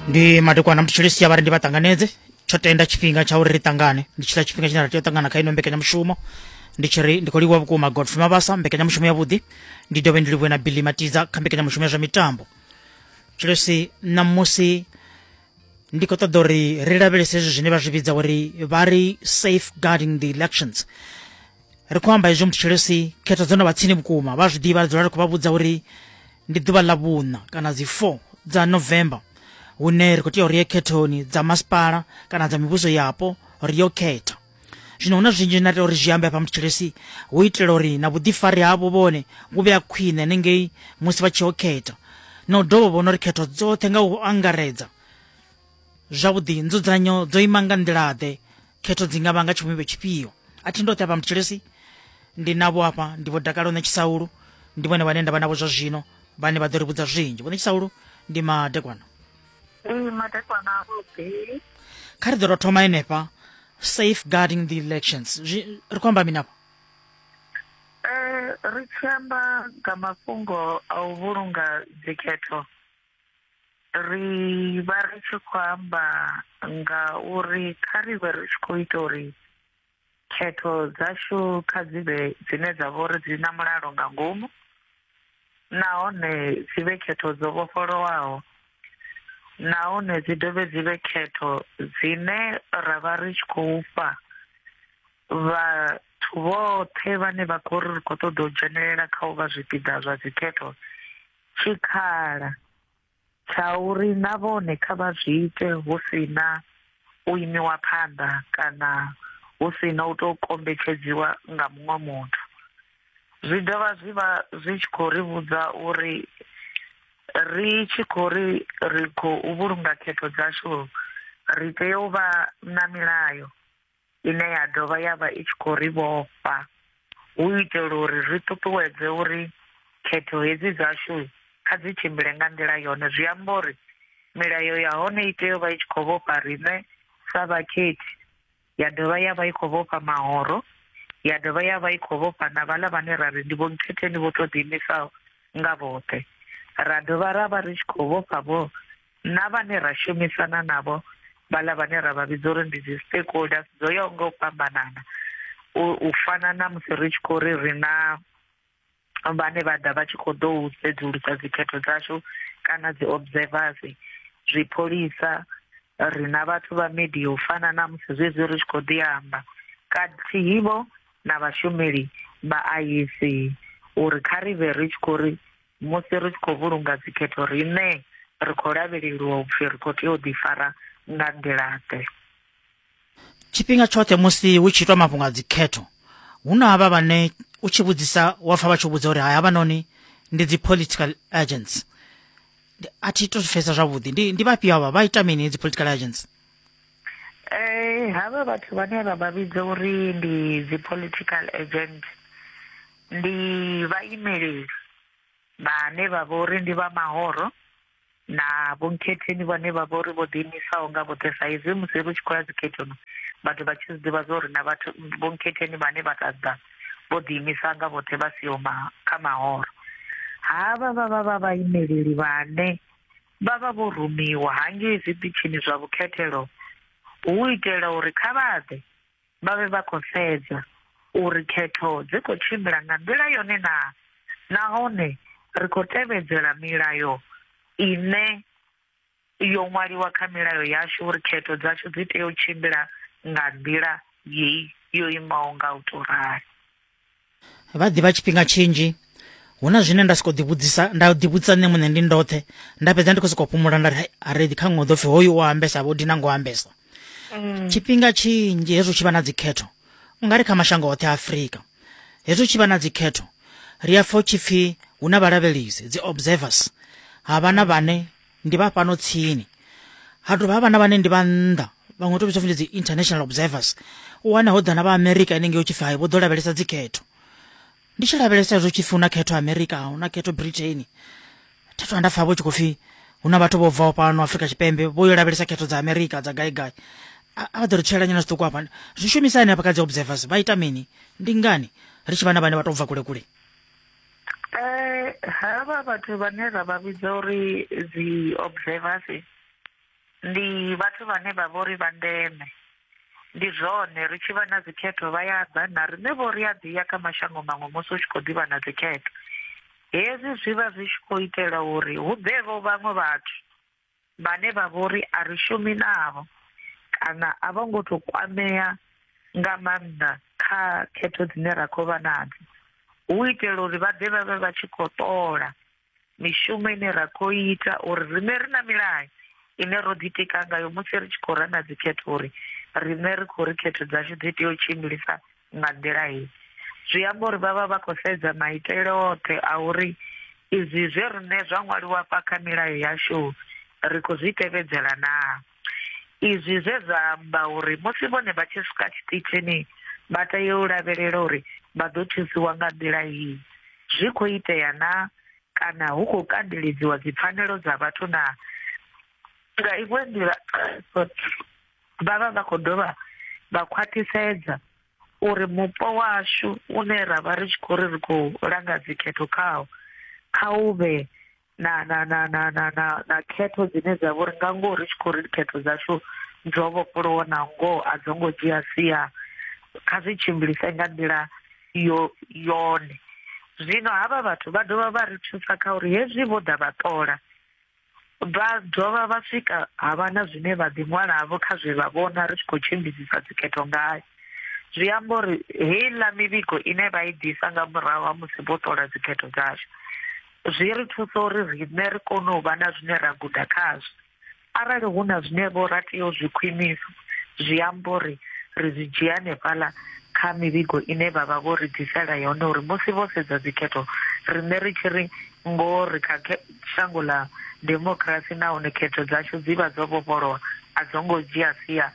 ndi madekwana mutshilisi ya vhari ndi vha ṱanganedze tsho tenda tshifhinga tsha uri ri ṱangane ndi tshila tshifhinga tshine ra tea u ṱangana kha ino mbekanyamushumo ndi tshi ri ndi khou livhuwa vhukuma godfrey mabasa mbekanyamushumo yavhuḓi ndi dovhe ndi livhuwe na billy matiza kha mbekanyamushumo ya zwa mitambo tshilisi ṋamusi ndi khou ṱoḓa uri ri lavhelese hezwi zwine vha zwi vhidza uri vha ri safeguarding the elections ri khou amba hezwo muthetshelesi khetho dzo no vha tsini vhukuma vha zwi ḓivha ri dzula ri khou vha vhudza uri ndi ḓuvha ḽa vhuṋa kana dzi four dza november hune ri khou tea uri ye khethoni dza masipala kana dza mivhuso yapo ri yo khetha zwino huna zwinzhi na tea uri zwi ambe hafha muthetshelesi hu itela uri na vhuḓifari havho vhone vhu vhe a khwine hanengei musi vha tshi yo khetha na u dovha vhona uri khetho dzoṱhe nga u angaredza Zwavhuḓi, nzudzanyo dzo ima nga nḓila-ḓe? Khetho dzi nga vha nga tshivhumbeo tshifhio? A thi ndoṱhe afha Mthulisi. Ndi navho afha, ndi Vho Dakalo na Tshisaulu. Ndi vhone vhane nda vha navho zwa zwino, vhane vha ḓo ri vhudza zwinzhi. Vhoṋe Tshisaulu, ndi madekwana. Ee, madekwana avhuḓi. Kha ri ḓo tou thoma henefha, safeguarding the elections. Zwi, ri khou amba mini afha? Eh, ri tshi amba nga mafhungo a u vhulunga dzikhetho ri vha ri tshi khou amba nga uri kha ri vhe ri tshi khou ita uri khetho dzashu kha dzi vhe dzine dza vha uri dzi na mulalo nga ngomu nahone dzi vhe khetho dzo vhofholowaho nahone dzi dovhe dzi vhe khetho dzine ra vha ri tshi khou fha vhathu vhoṱhe vhane vha khou ri ri khou ṱoḓa u dzhenelela kha u vha zwipiḓa zwa dzikhetho tshikhala tsha uri na vhone kha vha zwi ite hu si na u imiwa phanḓa kana hu si na u tou kombetshedziwa nga muṅwe muthu zwi dovha zwi vha zwi tshi khou ri vhudza uri ri tshi khou ri ri khou vhulunga khetho dzashu ri tea u vha na milayo ine ya dovha ya vha i tshi khou ri vhofha hu itela uri ri ṱuṱuwedze uri khetho hedzi dzashu kha dzi tshimbile nga nḓila yone zwi amba uri milayo ya hone i tea u vha i tshi khou vhofha riṋe sa vhakhethi ya dovha ya vha i khou vhofha mahoro ya dovha ya vha i khou vhofha na vhaḽa vhane ra ri ndi vho nkhetheni vho tou ḓiimisaho nga vhoṱhe ra dovha ra vha ri tshi khou vhofha vho na vhane ra shumisana navho vhala vhane ra vha vhidza uri ndi dzi stakeholders dzo yaho nga u fhambanana u fana na musi ri tshi khou ri ri na vhane vha ḓa vha tshi khou ḓo u sedzulusa dzikhetho dzashu kana dzi observers zwipholisa ri na vhathu vha media u fana na musi zwezwi ri tshi khou ḓi amba kathihi vho na vhashumeli vha IEC uri kha ri vhe ri tshi khou ri musi ri tshi khou vhulunga dzikhetho riṋe ri khou lavheleliwa upfi ri khou tea u ḓifara nga nḓilaḓe tshifhinga tshoṱhe musi hu tshi itwa mafhungo a dzikhetho hu na havha vhane u tshi vhudzisa wa pfa vha tshi vhudza uri hai havha noni ndi dzi political agents a thi to pfesa zwavhuḓi ndi ndi vhafhio havha vha ita mini dzi political agents eh hava vhathu vhane vha vha vhidza uri ndi dzi political agent ndi vhaimeleli vhane vha vha uri ndi vha mahoro na vhonkhetheni vhane vha vha uri vho ḓiimisaho nga vhoṱhe sa izwi musi ri tshi khou ya dzikhethoni vhathu vha tshi zwiḓivha zwa uri na vhathu vhonkhetheni vhane vha ṱaḓa vho ḓiimisa nga vhoṱhe vha siho kha mahoro havha vha vha vha vhaimeleli vhane vha vha vho rumiwa hangei zwiṱitshini zwa vhukhethelo hu u itela uri kha vha ḓe vha vhe vha khou sedza uri khetho dzi khou tshimbila nga nḓila yone naa nahone ri khou tevhedzela milayo ine yo ṅwaliwa kha milayo yashu uri khetho dzashu dzi tea u tshimbila nga nḓila yeyi yo imaho nga u tou rali. vha ḓivha tshifhinga tshinzhi hu na zwine nda soko ḓivhudzisa nda ḓivhudzisa nṋe muṋe ndi ndoṱhe nda fhedza ndi khou sokou fhumula nda ri aredi kha ṅwe ḓo pfhi hoyu o ambesa vho dina ngo ambesa mm. tshifhinga tshinzhi hezwo tshi vha na dzikhetho u nga ri kha mashango oṱhe a afurika hezwo tshi vha na dzikhetho ri a pfha u tshi pfhi hu na vhalavhelisi dzi observers ha vha na vhane ndi vha fhano tsini ha dovha havha na vhane ndi vha nnḓa vhaṅwe to vhidzwa pfi ndi dzi international observers u wana ho ḓana vha america henengei u tshi pfi hai vho ḓo lavhelesa dzikhetho ndi tshi lavhelesa zwo tshi pfi hu na khetho america hu na khetho britain thathu vha nda pfa vho tshi khou pfi hu na vhathu vho bvaho fhano afrika tshipembe vho yo lavhelesa khetho dza america dza gai gai a a vha ḓo ri tshelela nyana zwiṱuku hafha zwi shumisa hani hafha kha dzi observers vha ita mini ndi ngani ri tshi vha na vhane vha to bva kule kule Eh havha vhathu vhane ra vha vhidza uri dzi observers ndi vhathu vhane vha vha uri vha ndeme ndi zwone ri tshi vha na dzikhetho vha ya ḓa na riṋe vho ri a ḓi ya kha mashango maṅwe musi u tshi khou ḓivha na dzikhetho hezwi zwi vha zwi tshi khou itela uri hu ḓevho vhaṅwe vhathu vhane vha vhori a ri shumi navho kana a vho ngo to kwamea nga maanḓa kha khetho dzine ra khou vha nadzo hu itela uri vha ḓe vha vhe vha tshi khou ṱola mishumo ine ra khou ita uri riṋe ri na milayo ine ro ḓitika ngayo musi ri tshi khou rana dzikhetho uri riṋe ri khou ri khetho dzashu dzi tea u tshimbilisa nga nḓila hei zwi amba uri vhavha vha khou sedza maitele oṱhe a uri izwi zwe riṋe zwa ṅwaliwa fha kha milayo yashu ri khou zwi tevhedzela na izwi zwe zwa amba uri musi vhone vha tshi swika tshiṱitshini vha tea u lavhelela uri vha ḓo thusiwa nga nḓila iyi zwi khou itea na kana hu khou kandeledziwa dzipfanelo dza vhathu na nga iṅwe nḓila Vha vha vha khou dovha vha khwaṱhisedza uri mupo washu une ra vha ri tshi khou ri ri khou langa dzikhetho khawo kha u vhe na na na na na na na khetho dzine dza vhori nga ngoho ri tshi khou ri khetho dzashu dzo vhofholowa na ngoho a dzo ngo dzhia sia kha zwi tshimbilise nga nḓila yo yone zwino havha vhathu vha dovha vha ri thusa kha uri hezwi vho ḓa vha ṱola Vha dovha vha swika ha vha na zwine vha ḓiṅwalavho kha zwe vha vhona ri tshi khou tshimbidzisa dzikhetho ngayo. Zwi amba uri heiḽa mivhigo ine vha i ḓisa nga murahu ha musi vho ṱola dzikhetho dzashu zwi ri thusa uri riṋe ri kone u vha na zwine ra guda khazwo. Arali hu na zwine vho ra tea u zwi khwinisa, zwi amba uri ri zwi dzhia hanefhaḽa kha mivhigo ine vha vha vho ri ḓisela yone uri musi vho sedza dzikhetho riṋe ri tshi ri ngoho ri kha Shango ḽa demokirasi nahone khetho dzashu dzi vha dzo vhofholowa a dzo ngo dzhia sia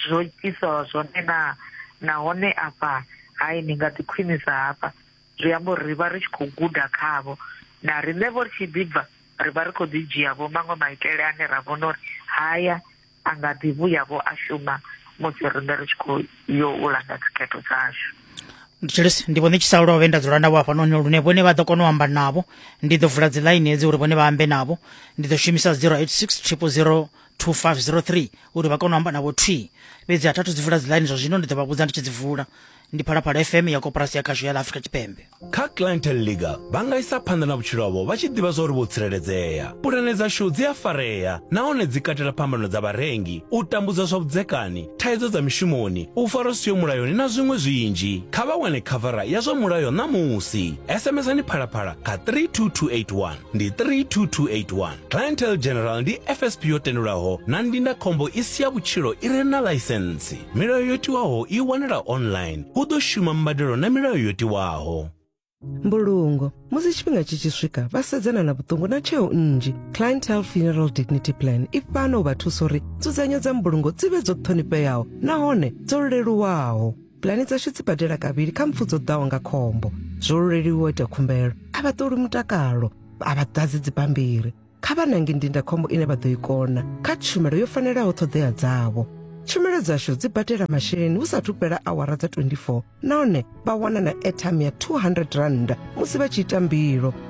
zwo itwaho zwone naa? Nahone afha hai ni nga ḓi khwinisa hafha, zwi amba uri ri vha ri tshi khou guda khavho. Na riṋevho ri tshi ḓi bva ri vha ri khou ḓi dzhiavho maṅwe maitele ane ra vhona uri haya a nga ḓi vhuya-vho a shuma musi riṋe ri tshi khou yo u langa dzikhetho dzashu Julius ndi vhone tshi sa lovhe nda dzula navho hafhanoni lune vhone vha ḓo kona u amba navho ndi ḓo vula dziḽaini hedzi uri vhone vha ambe navho ndi ḓo shumisa 086 000 2503 uri vha kone u amba navho thwi fhedzi a thathu dzi vula dziḽaini zwa zwino ndi ḓo vha vhudza ndi tshi dzi vula ndi phalaphala fm ya koporasi ya khasho ya ḽa afrika tshipembe kha clientele league vha nga isa phanḓa na vhutshilo havho vha tshi ḓivha zwa uri vho tsireledzea pulane dzashu dzi a farea nahone dzi katela phambano dza vharengi u tambudzwa zwa vhudzekani thaidzo dza mishumoni u farwa siyo mulayoni na zwiṅwe zwinzhi kha vha wane khavara ya zwa mulayo ṋamusi sms ni phalaphala kha 32281 ndi 32281 clientele general ndi fsp yo tendelwaho na ndindakhombo i si ya vhutshilo i re na ḽaisentsi milayo yo tiwaho i wanala online hu ḓo shuma mbadelo na milayo yo tiwaho mbulungo musi tshifhinga tshi tshi swika vha sedzana na vhuṱungu na tsheo nnzhi clientele funeral dignity plan i fhano u vha thusa uri nzudzanyo dza mbulungo dzi vhe dzo ṱhonifheaho nahone dzo leluwaho pulani dzashu dzi badela kavhili kha mpfu dzo ḓaho nga khombo zwo luleliwa ita khumbelo a vha ṱoli mutakalo a vha ḓadzi dzibammbiri kha vha nange ndindakhombo ine vha ḓo i kona kha tshumelo yo fanelaho ṱhoḓea dzavho tshumelo dzashu dzi badela masheleni hu sathu fhela awara dza 24 nahone vha wana na airtime ya 200 rand musi vha tshi ita mbilo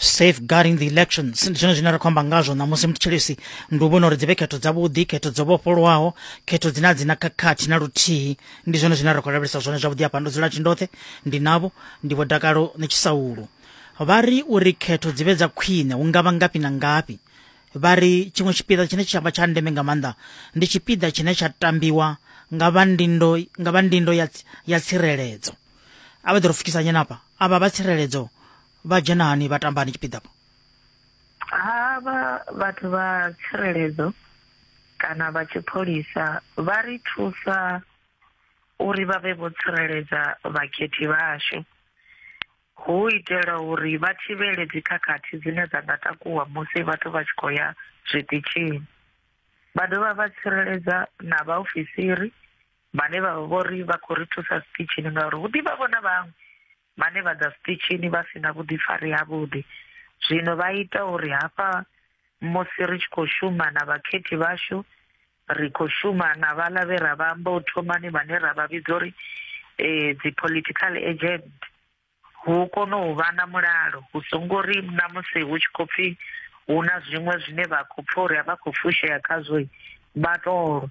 safeguarding the elections ndi chino chine rakhomba ngazvo namusi mutshilisi ndi u vhona uri dzi vhe khetho dzavhuḓi khetho dzo vhofholowaho khetho dzine a dzi na khakhathi na luthihi ndi zwone zwine ra khou lavhelesa zwone zwavhuḓi hafha ndo dzula tshindoṱhe ndi navho ndi vho dakalo ni tshisaulu vha ri uri khetho dzi vhe dza khwine hu nga vha ngafhi na ngafhi vha ri tshiṅwe tshipiḓa tshine tsha vha tsha ndeme nga maanḓa ndi tshipiḓa tshine tsha tambiwa nga vha ndindo nga vha ndindo ya, ya tsireledzo a vha ḓi ro pfukisa nyenapa a vha vha tsireledzo vha dzhena hani vha tambani tshipiḓapo ha vha vhathu vha tsireledzo kana vha tshipholisa vha ri thusa uri vha vhe vho tsireledza vhakhethi vhashu hu itela uri vha thivhele dzikhakhathi dzine dza nga takuwa musi vhathu vha tshi khou ya zwiṱitshini vha dovha vha tsireledza na vhaofisiri vhane vha vha vho ri vha khou ri thusa sititshini ngauri hu ḓivha vhona vhaṅwe vhane vha ḓa sititshini vha si na vhuḓifari havhuḓi zwino vha ita uri hafha musi ri tshi khou shuma na vhakhethi vhashu ri khou shuma na vhaḽa vhe ra vha amba u thomani vhane ra vha vhidza uri um dzi-political agent hu kone u vha na mulalo hu songo ri na musi hu tshi khou pfhi hu na zwiṅwe zwine vha khou pfha uri a vha khou fushea khazwo vha tolwa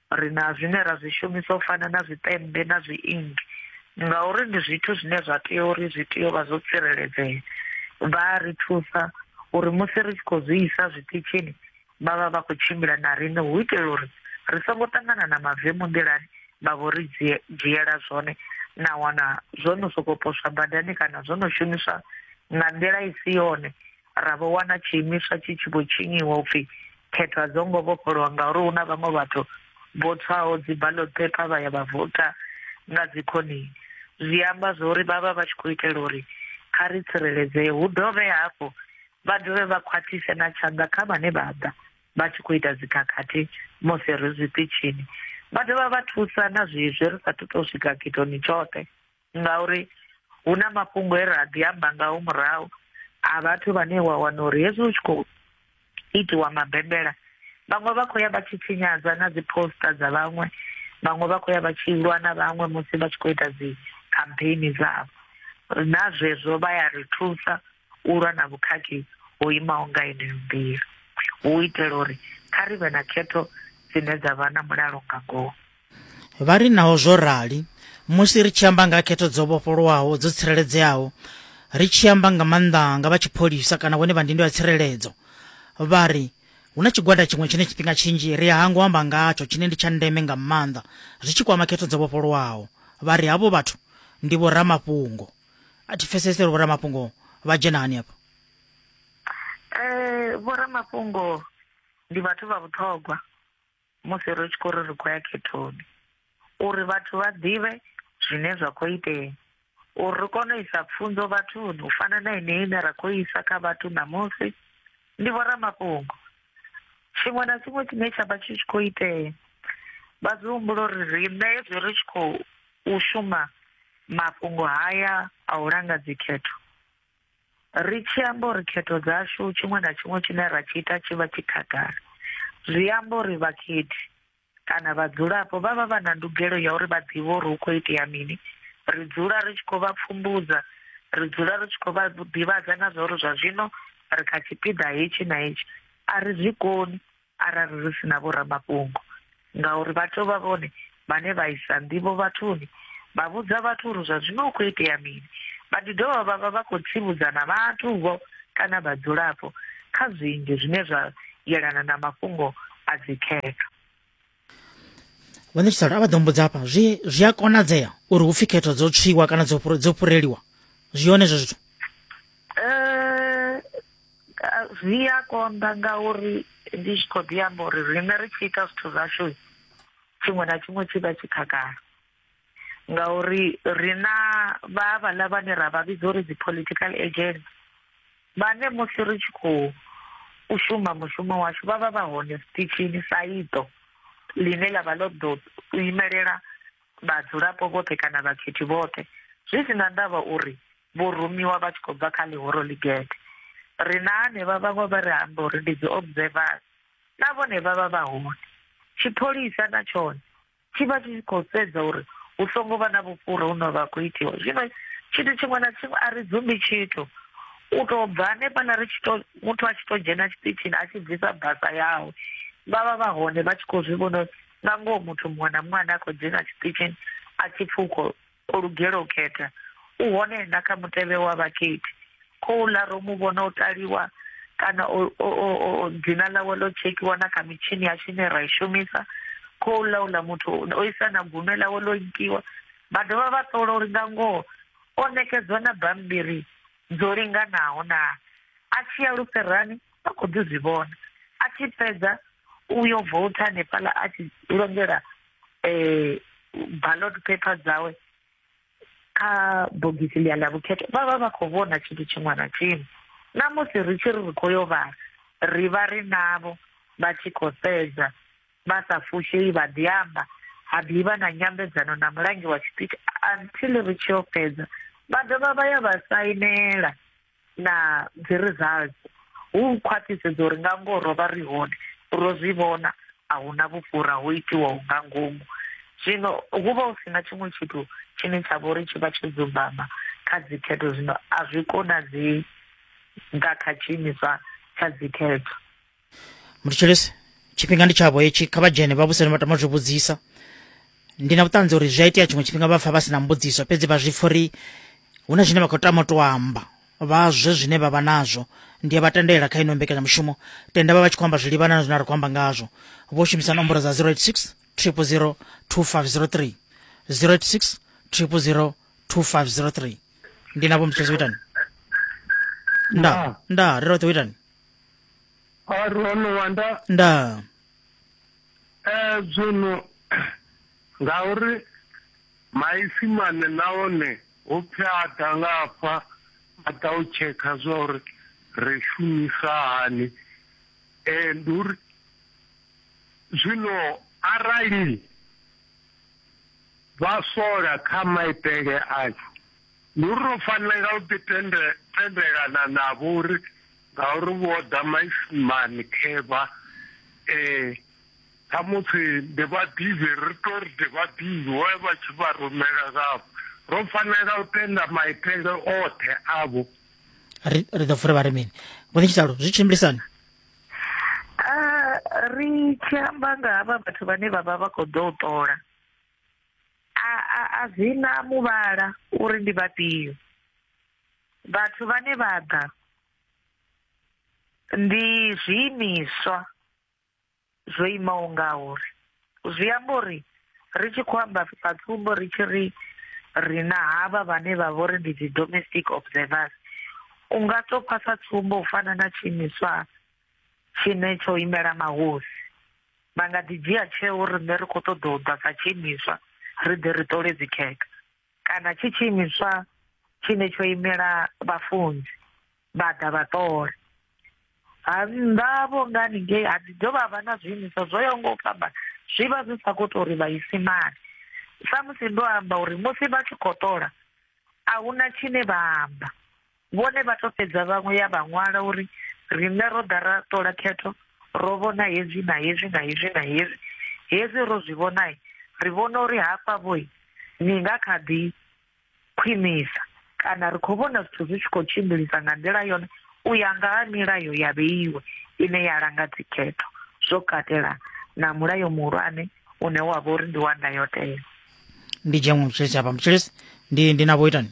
Ri na zwine ra zwi shumisa u fana na zwiṱemmbe na zwiingi ngauri ndi zwithu zwine zwa tea uri zwi tea u vha zwo tsireledzea. Vha a ri thusa uri musi ri tshi khou zwi isa zwiṱitshini vha vha vha khou tshimbila na riṋe hu itela uri ri songo ṱangana na mavemu nḓilani vha vho ri dzhiela zwone na wana zwo no sokou poswa badani kana zwo no shumiswa nga nḓila i si yone ra vho wana tshiimiswa tshi tshi vho tshinyiwa upfi khetho a dzo ngo vhofholowa ngauri hu na vhaṅwe vhathu vho tswaho dzi ballot paper vha ya vha vota nga dzi khonini zwi amba zwori vha vha vha tshi khou itela uri kha ri tsireledzee hu dovhe hafhu vha dovhe vha khwathise na tshanḓa kha vhane vha ḓa vha tshi khou ita dzikhakhathi musi ri zwiṱitshini vha dovha vha thusa na zwezwi ri sa thu to swika khethoni tshoṱhe ngauri hu na mafhungo e ra ḓi amba ngaho murahu a vhathu vhane wa wana uri hezwi hu tshi khou itiwa mabembela vhaṅwe vha khou ya vha tshi tshinyadza na dzi poster dza vhaṅwe vhaṅwe vha khou ya vha tshi lwa na vhaṅwe musi vha tshi khou ita dzi campaign dzavho na zwezwo vha ya ri thusa u lwa na vhukhakhi ho imaho nga yeneyo nḓila u itela uri kha ri vhe na khetho dzine dza vha na mulalo nga ngoho Vha ri naho zwo rali, musi ri tshi amba nga ha khetho dzo vhofholowaho dzo tsireledzeaho, ri tshi amba nga maanḓa nga vha tshipholisa kana vhone vha ndindo ya tsireledzo, vha ri, Hu na tshigwada tshiṅwe tshine tshifhinga tshinzhi ri a hangwa u amba ngatsho tshine ndi tsha ndeme nga maanḓa zwi tshi kwama khetho dzo vhofholowaho. Vha ri havho vhathu ndi vhoramafhungo. A thi pfesesi uri vhoramafhungo vha dzhena hani afho. Eh, vhoramafhungo ndi vhathu vha vhuṱhogwa. musi ri tshi khou ri ri khou ya khethoni uri vhathu vha ḓivhe zwine zwa khou itea uri ri kone u isa pfunzo vhathuni u fana na ineyi ine ra khou isa kha vhathu ṋamusi ndi vhoramafhungo tshiṅwe na tshiṅwe tshine tsha vha tshi tshi khou itea vha zwi humbula uri riṋe hezwi ri tshi khou shuma mafhungo haya a u langa dzikhetho Ri tshi amba uri khetho dzashu tshiṅwe na tshiṅwe tshine ra tshi ita tshi vha tshi khagala, zwi amba uri vhakhethi kana vhadzulapo vha vha vha na ndugelo ya uri vha ḓivhe uri hu khou itea mini. Ri dzula ri tshi khou vha pfumbudza, ri dzula ri tshi khou vha ḓivhadza na zwa uri zwa zwino ri kha tshipiḓa hetshi na hetshi a ri zwi koni arali ri si na vhoramafhungo ngauri vha tou vha vhone vhane vha isa nḓivho vhathuni vha vhudza vhathu uri zwa zwino u khou itea mini vha ḓi dovha vha vha vha khou tsivhudza na vhathu-vho kana vhadzulapo kha zwinzhi zwine zwa yelana na mafhungo a dzikhetho vhone tshisalo a vha ḓo mbudza hafha zwi zwi a konadzea uri hu pfi khetho dzo tswiwa kana dzo dzo fhureliwa zwi hone zwo zwithu eh, zwi a konḓa ngauri ndi tshi khou ḓi amba uri riṋe ri tshi ita zwithu zwashu tshiṅwe na tshiṅwe tshi vha tshi khagala ngauri ri na vha vhaḽa vhane ra vha vhidza uri dzi political agent vhane musi ri tshi khou u shuma mushumo washu vha vha vha hone zwiṱitshini sa iṱo ḽine ḽa vha ḽo ḓo u imelela vhadzulapo vhoṱhe kana vhakhethi vhoṱhe zwi si na ndavha uri vho rumiwa vha tshi khou bva kha ḽihoro ligede ri na hanevha vhaṅwe vha ri amba uri ndi dzi observers na vhone vha vha vha hone tshipholisa na tshone tshi vha tshi tshi khou sedza uri hu songo vha na vhufhura hu no vha khou itiwa zwino tshithu tshiṅwe na tshiṅwe a ri dzumbi tshithu u tou bva hanefhaḽa ri tshi to muthu a tshi to dzhena tshiṱitshini a tshi bvisa basa yawe vha vha vha hone vha tshi khou zwi vhona nga ngoho muthu muṅwe na muṅwe ane a khou dzhena tshiṱitshini a tshi pfhi u khou O lugela u khetha, u hone na kha mutevhe wa vhakhethi. Khouḽa ro mu vhona o taliwa kana o, o, o, o, dzina ḽawe ḽo tshekhiwa na kha mitshini yashu ine ra i shumisa. Khouḽa uḽa muthu o isa na gume ḽawe ḽo nkiwa. Vha dovha vha ṱola uri nga ngoho o ṋekedzwa na bammbiri dzo linganaho naa. A tshi ya lufherani, vha khou ḓi zwi vhona a tshi fhedza u yo vouta hanefhaḽa a tshi longela um ballot paper dzawe kha bogisi ḽia ḽa vhukhetho vha vha vha khou vhona tshithu tshiṅwe na tshiṅwe na musi ri tshi ri ri khou yo vhala ri vha ri navho vha tshi khou sedza vha sa fushei vha ḓi amba ha ḓivha na nyambedzano na mulangi wa tshipiti until ri tshi yo fhedza vha dovha vha ya vha sainela na dzi results hu khwaṱhisedzo uri nga ngoho ro vha ri hone ro zwi vhona a hu na vhufhura ho itiwaho nga ngomu zwino hu vha hu si na tshiṅwe tshithu tshine tsha vha uri tshi vha tsho dzumbama kha dzikhetho zwino a zwi konadzei nga kha tshiimiswa tsha dzikhetho mutshilisi tshifhinga ndi tshavho hetshi kha vha dzhene vha vhuseni vha tama zwi vhudzisa ndi na vhuṱanzi uri zwi a itea tshiṅwe tshifhinga vha pfa vha si na mbudziso fhedzi vha zwi pfa uri hu na zwine vha khou tama u tou amba vha zwe zwine vha vha nazwo ndi a vha tendela kha ino mbekanyamushumo tenda vha vha tshi khou amba zwi livhana na zwine ra khou amba ngazwo vho shumisa nomboro dza 086 000 2503 086 000 2503 ndi navho mutshilisi u itani nda nda ri roṱhe u itani Arono wanda nda eh zwino ngauri maipfi mane nahone hu pfi a ḓa nga afha a ḓa u tshekha zwa uri ri shumisa hani eh ndi uri zwino arali vha sola kha maitele ashu Ndi uri ro fanela u ḓi tende, tendelana navho uri ngauri vho ḓa maisimani khevha eh khamusi ndi vhaḓivhi ri to ri ndi vhaḓivhi vho vha tshi vha rumela ngavho ro fanela u tenda maitele oṱhe avho ri ri ḓo fura vha ri mini vho ni tshitalo zwi tshimbilisani Ah, ri tshi amba nga havha vhathu vhane vha vha vha khou ḓo u ṱola a a a dzina muvhala uri ndi vhafhio vhathu vhane vha ḓa ndi zwiimiswa zwo imaho nga uri zwi amba uri ri tshi khou amba sa tsumbo ri tshi ri ri na havha vhane vha vha uri ndi dzi domestic observers u nga to phasa tsumbo u fana na tshiimiswa tshine tsho imela mahosi vha nga ḓi dzhia tsheo uri riṋe ri khou ṱoḓa u ḓa sa tshiimiswa ri ḓe ri ṱole dzikhekhe kana tshi tshiimiswa tshine tsho imela vhafunzi vha ḓa vha ṱole ha nnḓa vho nga haningei ha ḓi ḓo vha vha na zwiimiswa zwo yaho nga u fhamba zwi vha zwi sa khou tou ri vhaisimane samusi ndo amba uri musi vha tshi khou ṱola a hu na tshine vha amba Vhone vha tou fhedza vhaṅwe ya vha ṅwala uri riṋe ro ḓa ra ṱola khetho ro vhona hezwi na hezwi na hezwi na hezwi. Hezwi ro zwi vhonai ri vhona uri hafha vhoi ni nga kha ḓi khwinisa kana ri khou vhona zwithu zwi tshi khou tshimbilisa nga nḓila yone u ya nga ha milayo ya vheiwe ine ya langa dzikhetho zwo katela na mulayo muhulwane une wa vha uri ndi wa ndayotewa. ndi dzhenwe mutshilisi hafha mutshilisi ndi ndi na vho itani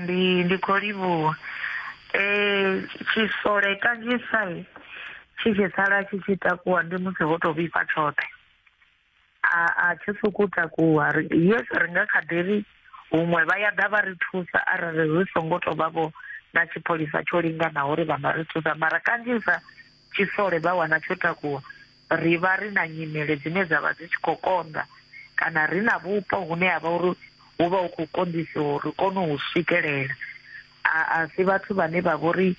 Ndi ndi kho livhuwa eh tshisole kanzhisa tshi tshi sala tshi tshi takuwa ndi musi ho to vhifha tshoṱhe a a tshi sokou takuwa ri yes ri nga kha ḓi ri huṅwe vha ya ḓa vha ri thusa arali ri songo to vha vho na tshipholisa tsho linganaho uri vha nga ri thusa mara kanzhisa tshisole vha wana tsho takuwa, ri vha ri na nyimele dzine dza vha dzi tshi khou konḓa kana ri na vhupo hune ha vha uri hu vha hu khou konḓisiwa uri kone u swikelela. A si vhathu vhane vha vha uri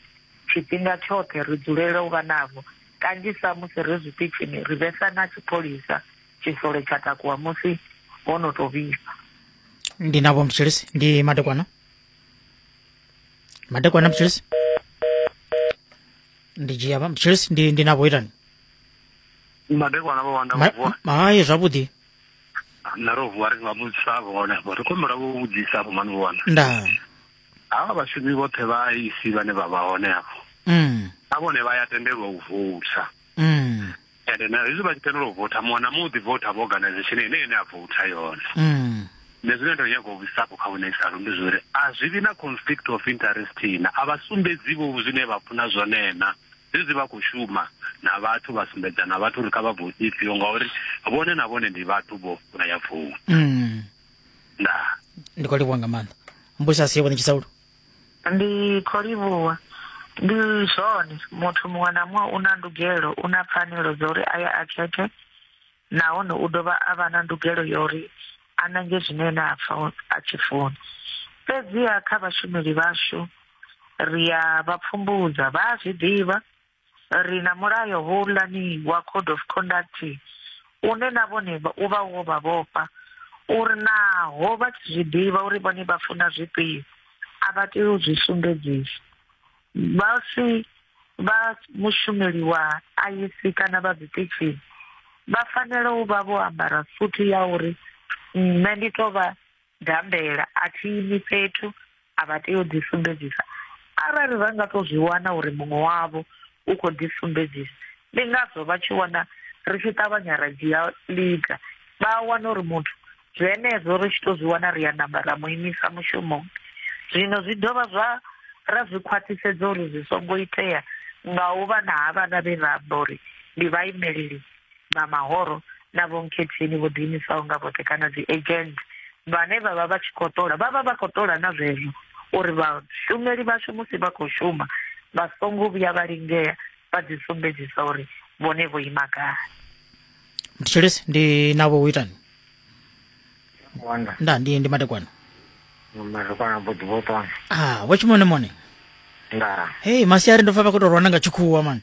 tshifhinga tshoṱhe ri dzulela u vha navho. Kanzhisa musi ri zwiṱitshini ri vhesa na tshipholisa tshisole tsha takuwa musi ho no tou vhifha. Ndi na vho Mtshilisi, ndi madekwana. Madekwana Mtshilisi. ndi dzhia vha- chelsea ndi ndi navho itani madekwana vho wanda Ma- vuwa ma- hayi zwavhuḓi na ro vuwa ri nga vhudzisa vhone vho ri khombela vho vhudzisa vho mani vho wanda ndaa havha vhashumi vhoṱhe vha isi vhane vha vha hone afho mm. na vhone vha ya tendelwa u voutha mm. ende na hezwi vha tshi tendela u votha muṅwe na muṅwe u ḓi votha vha organization ine ene a votha yone mm. nṋe zwine ndo nyaga u vhuisapo kha vhunesalo ndi zwori a zwi vhi na conflict of interest na a vha sumbedzi vho zwine vha funa zwone na zwezwi vha khou shuma na vhathu vha sumbedza na vhathu uri kha vha vote ifhio ngauri vhone na vhone ndi vhathu vho vha ya vouta mm. nda ndi khou livhuwa nga maanḓa mbusa si yevho ni tshisaulo Ndi khou livhuwa. Ndi zwone, muthu muṅwe na muṅwe u na ndugelo, u na pfanelo dza uri a ye a khethe nahone u dovha a vha na ndugelo ya uri a nange zwine ene a pfa a tshi funa. Fhedziha kha vhashumeli vhashu ri a vha pfumbudza, vha a zwi ḓivha. Ri na mulayo houḽani wa code of conduct une na vhone u vha wo vha vhofha uri naho vha tshi zwi ḓivha uri vhone vha funa zwifhio a vha tei u zwi sumbedzisa vha si vha mushumeli wa IEC kana vha zwiṱitshini vha fanela u vha vho ambara suthu ya uri nṋe ndi tou vha Gambela, a thi imi fhethu, a vha tei u ḓisumbedzisa. Arali vha nga tou zwi wana uri muṅwe wavho u khou ḓisumbedzisa, ndi ngazwo vha tshi wana ri tshi ṱavhanya ra dzhia ḽiga. Vha a wana uri muthu zwenezwo ri tshi tou zwi wana ri a namba ra mu imisa mushumoni. Zwino zwi dovha zwa ra zwi khwaṱhisedza uri zwi songo itea nga u vha na havhaḽa vhe ra amba uri ndi vhaimeleli vha mahoro na vhonkhetheni vho ḓiimisaho nga vhoṱhe kana dzi agent vhane vha vha vha tshi khou ṱola vha vha vha khou ṱola na zwezwo uri vhashumeli vhashu musi vha khou shuma vha songo vhuya vha lingea vha ḓi sumbedzisa uri vhone vho ima gai mthetshelesi ndi navho u itani wanda nda ndi ndi madekwana mazikwana budi vhotona ah wa tshimone mone nda hei masiari ndo pfa vha khou tou rwana nga tshikhuwa mani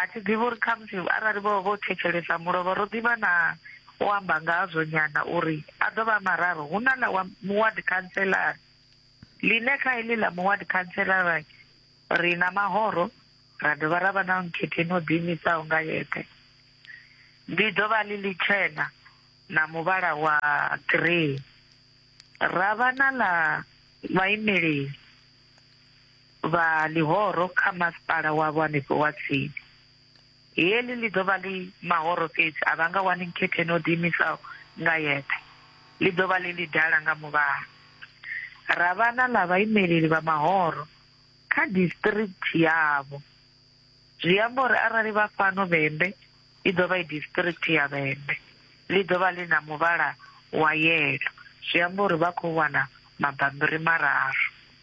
A thi ḓivhi uri khamusi arali vho vha vho thetshelesa mulovha, ro ḓi vha na u amba ngazwo nyana uri a ḓo vha a mararu. Hu na ḽa wa muward khantseḽara, ḽine kha heḽi ḽa muward khantseḽara ri na mahoro ra dovha ra vha na nkhetheini o ḓiimisaho nga yeṱhe. Ḽi ḓo vha ḽi ḽitshena na muvhala wa grey. Ra vha na ḽa vhaimeleli. vha ḽihoro kha masipala wavho hanefho wa tsini. Heḽi ḽi ḓo vha ḽi mahoro fhedzi, a vha nga wani nkhetheni o ḓiimisaho nga yeṱhe. Ḽi ḓo vha ḽi ḽidala nga muvhala. Ra vha na ḽa vhaimeleli vha mahoro kha disiṱirikthi yavho. Zwi amba uri arali vha fhano Vhembe, i ḓo vha i disiṱirikthi ya Vhembe. Ḽi ḓo vha ḽi na muvhala wa yelo, zwi amba uri vha khou wana mabammbiri mararu.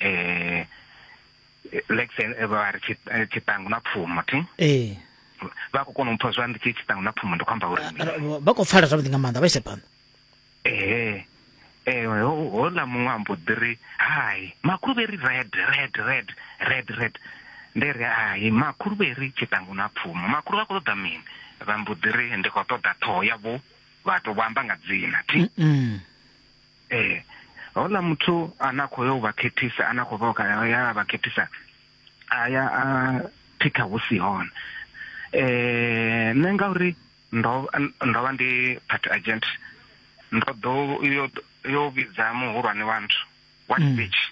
eh like say eh, vha ri tshi- eh, tshiṱangu na pfumo thi ee vha khou kona u mpha zwa ndi tshi tshiṱangu na pfumo ndi khou amba uri mini? Ara- vha- vha khou pfala zwavhuḓi nga maanḓa vha ise phanḓa ehe eh ho- hola muṅwe ambo ḓi ri hai makhuluvheri red red red red red ndi ri hai makhuluvheri tshiṱangu na pfumo makhulu vha khou ṱoḓa mini vha mbo ḓi ri ndi khou ṱoḓa ṱhoho yavho vha to vho amba nga dzina thi Mm. Ee, houḽa muthu ane a khou yo u vha khethisa ane a khou vha ya a vha khethisa a ya a thikha hu si hone um nṋe ngauri ndo ndo vha ndi party agent ndo ḓo yo yo vhidza muhulwane wa nthu wa tshipitshi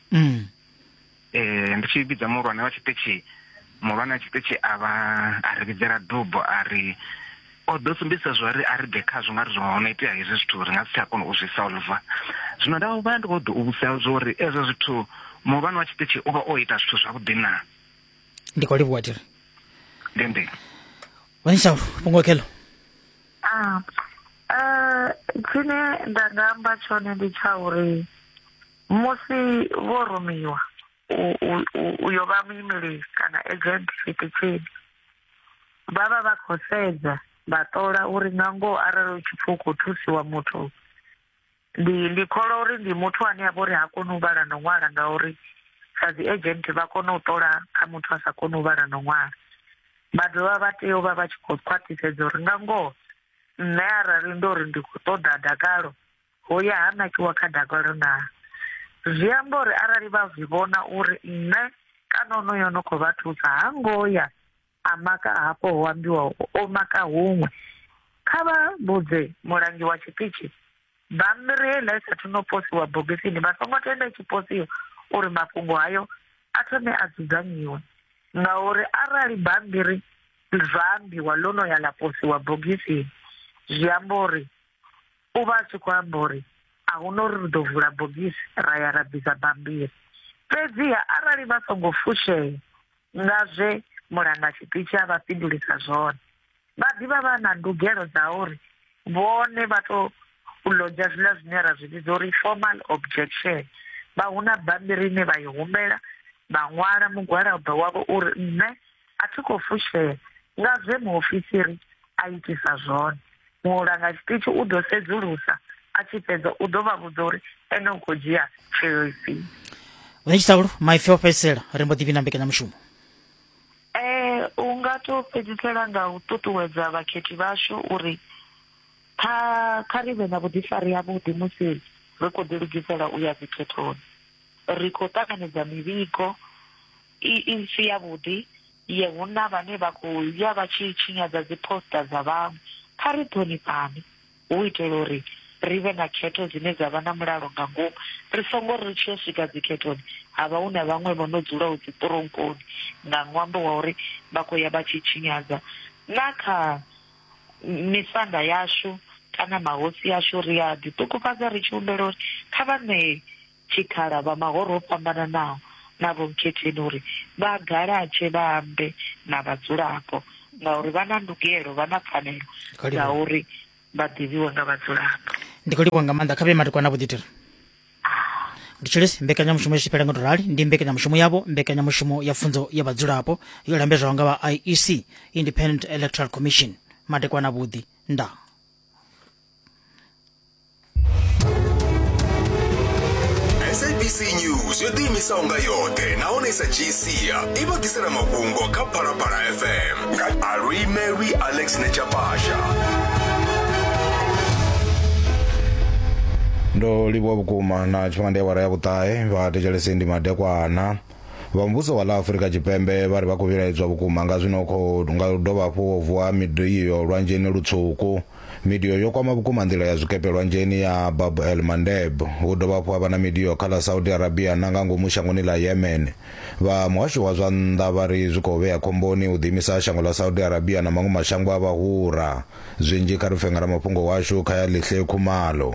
eh ndi tshi vhidza muhulwane wa tshiṱitshi muhulwane wa tshiṱitshi a vha a ri vhidzela dubo a ri o ḓo sumbedzisa zwo ri a ri bve khazwo nga ri zwo ho no itea hezwi zwithu ri nga si tsha kona u zwi solva zwino nda vha ndi khou ḓo u vhudzisa zwo uri ezwo zwithu muhulwane wa tshiṱitshi u vha o ita zwithu zwavhuḓi na ndi khou livhuwa tiri ndi ndi wanishawu fhungo khelo ah, eh, tshine nda nga amba tshone ndi tsha uri Musi vho rumiwa u yo vha muimeli kana agent tshiṱitshini vha vha vha khou sedza vha ṱola uri nga ngoho arali u tshi pfhi u khou thusiwa muthu ndi ndi kholwa uri ndi muthu ane a vha uri ha koni u vhala no ṅwala ngauri sa dzi agent vha kona u ṱola kha muthu a sa koni u vhala no ṅwala vha dovha vha tea u vha vha tshi khou khwaṱhisedza uri nga ngoho nṋe arali ndo ri ndi khou ṱoḓa dakalo ho ya ha nakiwa kha dakalo naa zwi amba uri arali vha zwi vhona uri nṋe kana onoyo no khou vha thusa ha ngo ya a maka hafho ho ambiwa o maka huṅwe kha vha vhudze mulangi wa tshiṱitshi bammbiri heiḽa i sathu no posiwa bogisini vha songo tenda i tshi posiwa uri mafhungo hayo a thome a dzudzanyiwe ngauri arali bammbiri zwa ambiwa ḽo no ya ḽa posiwa bogisini zwi amba uri u vha a tshi khou amba uri a hu na uri ri ḓo vula bogisi ra ya ra bvisa bammbiri. Fhedziha arali vha songo fushea nga zwe mulanga tshiṱitshi a vha fhindulisa zwone, vha ḓi vha vha na ndugelo dza uri vhone vha tou lodzha zwiḽa zwine ra zwi vhidza uri formal objection. Vha huna bammbiri ine vha i humbela, vha ṅwala mugwalabo wavho uri nṋe A thi khou fushea nga zwe muofisiri a itisa zwone. Mulanga tshiṱitshi u ḓo sedzulusa a tshi fhedza u ḓo vha vhudza uri ene u khou dzhia tsheo ifhio. Hune tshiṱaulu maipfi o fhedzisela ri mbo ḓi vhina mbekanyamushumo. Eh, u nga to fhedzisela nga u ṱuṱuwedza vhakhethi vhashu uri kha kha ri vhe na vhuḓifari havhuḓi musi ri khou ḓilugisela u ya dzikhethoni. Ri khou ṱanganedza mivhigo I, i si yavhuḓi ye hu na vhane vha khou ya vha tshi tshinyadza dziphosita dza vhaṅwe. Kha ri ṱhonifhane hu u itela uri ri vhe na khetho dzine dza vha na mulalo nga ngomu, ri songo ri ri tshi yo swika dzikhethoni ha vha hu na vhaṅwe vho no dzulaho dziṱironkoni nga ṅwambo wa uri vha khou ya vha tshi tshinyadza na kha misanda yashu kana mahosi ashu. Ri a ḓiṱukufhadza ri tshi humbela uri kha vha ṋee tshikhala vha mahoro o fhambananaho na Vho Mkhetheni uri vha galatshe vha ambe na vhadzulapo ngauri vha na ndugelo, vha na pfanelo dza uri vha ḓivhiwe nga vhadzulapo. Ndi khou livhuwa nga maanḓa kha vhe madekwana vho ḓitira Nditshilisi mbekanyamushumo yo tshipela nga to rali ndi mbekanyamushumo yavho mbekanyamushumo ya pfunzo ya vhadzulapo yo lambedzwaho nga vha IEC Independent Electoral Commission madekwana vhuḓi nda sabc news yo ḓiimisaho nga yoṱhe nahone i sa dzhii sia i vha ḓisela mafhungo kha phalaphala fm nga aluimelwi alex nechapasha ndo livhuwa vhukuma na tshifhinga ndi awara ya vhuṱahe vha thetshelese ndi madekwana Vha muvhuso wa ḽa Afurika Tshipembe vha ri vha khou vhilaedzwa vhukuma nga zwino khou nga u dovha hafhu ho vuwa midio lwanzheni lutswuku. Midio yo kwama vhukuma nḓila ya zwikepe lwanzheni ya Bab el Mandeb. Hu dovha hafhu ha vha na midio kha ḽa Saudi Arabia na nga ngomu shangoni ḽa Yemen. Vha muhasho wa zwa nnḓa vha ri zwi khou vhea khomboni u ḓiimisa ha shango ḽa Saudi Arabia na maṅwe mashango a vhahura. Zwinzhi kha ri pfe nga ramafhungo washu Khayelihle Khumalo.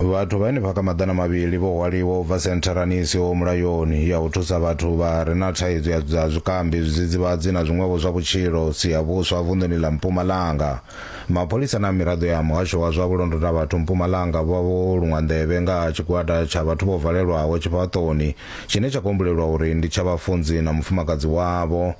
vhathu vhane vha kha maḓana mavhili vho hwaliwa u bva sentharani i siho mulayoni ya u thusa vhathu vha re na thaidzo ya dza zwikambi zwidzidzivhadzi na zwiṅwevho zwa vhutshilo si ya vhuswa vunḓuni ḽa mpumalanga mapholisa na miraḓo ya muhasho wa zwa vhulondota vhathu mpumalanga vha vho luṅwa nḓevhe nga ha tshigwada tsha vhathu vho valelwaho tshifhaṱoni tshine tsha kombulelwa uri ndi tsha vhafunzi na mufumakadzi wavho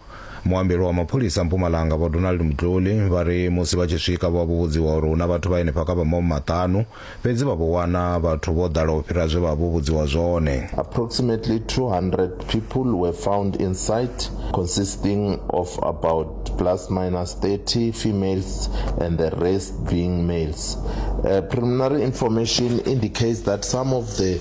Muambelwa wa mapholisa Mpumalanga Vho Donald Mdluli vha ri musi vha tshi swika vho vha vho vhudziwa uri hu na vhathu vha henefha kha vha maho maṱanu, fhedzi vha vho wana vhathu vho ḓala u fhira zwe vha vha vho vhudziwa zwone. Approximately 200 people were found inside, consisting of about plus minus 30 females and the rest being males. Uh, preliminary information indicates that some of the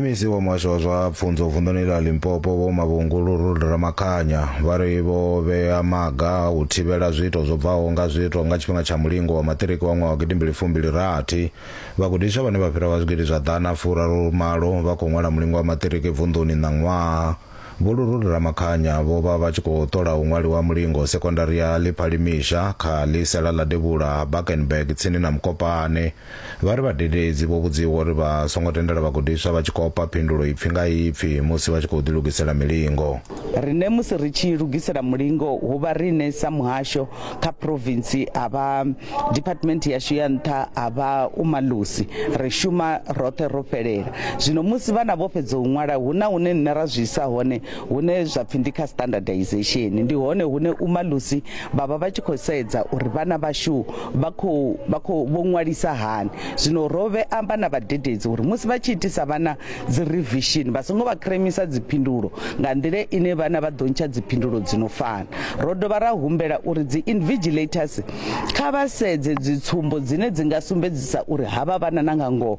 mec wa muhasho wa zwa pfunzo vunḓuni ḽa limpopo vho mavhungu luruli ramakhanya vha ri vho vhea maga a u thivhela zwiito zwo bvaho nga zwiito nga tshifhinga tsha mulingo wa maṱiriki wa ṅwaha wa gidimbili fumbili rathi vhagudiswa vhane vha fhira vha zwigidi zwa ḓana furaru malo vha khou ṅwala mulingo wa maṱiriki vunḓuni ṋaṅwaha vho luruli ramakhanya vho vha vha tshi khou ṱola u ṅwaliwa mulingo sekondari ya ḽiphalimisha kha ḽisela ḽa devhula ha bakenberg tsini na mukopane Vha ri vhadededzi vho vhudziwa uri vha songo tendela vhagudiswa vha tshi kopa phindulo ipfi nga ipfi musi vha tshi khou ḓilugisela milingo. Riṋe musi ri tshi lugisela mulingo hu vha riṋe sa muhasho kha phurofintsi ha vha diphathimenthe yashu ya nṱha ha vha u malusi ri shuma roṱhe ro fhelela. Zwino musi vhana vho fhedza u ṅwala hu na hune nṋe ra zwi isa hone hune zwa pfi ndi kha standardization ndi hone hune umalusi vha vha vha tshi khou sedza uri vhana vhashu vha khou vha khou vho ṅwalisa hani zwino ro vhe amba na vhadededzi uri musi vha tshi itisa vhana dzi revision vha songo vha kremisa dziphindulo nga nḓila ine vhana vha ḓo ntsha dziphindulo dzi no fana ro dovha ra humbela uri dzi invigilators kha vha sedze dzitsumbo dzine dzi nga sumbedzisa uri havha vhana na nga ngoho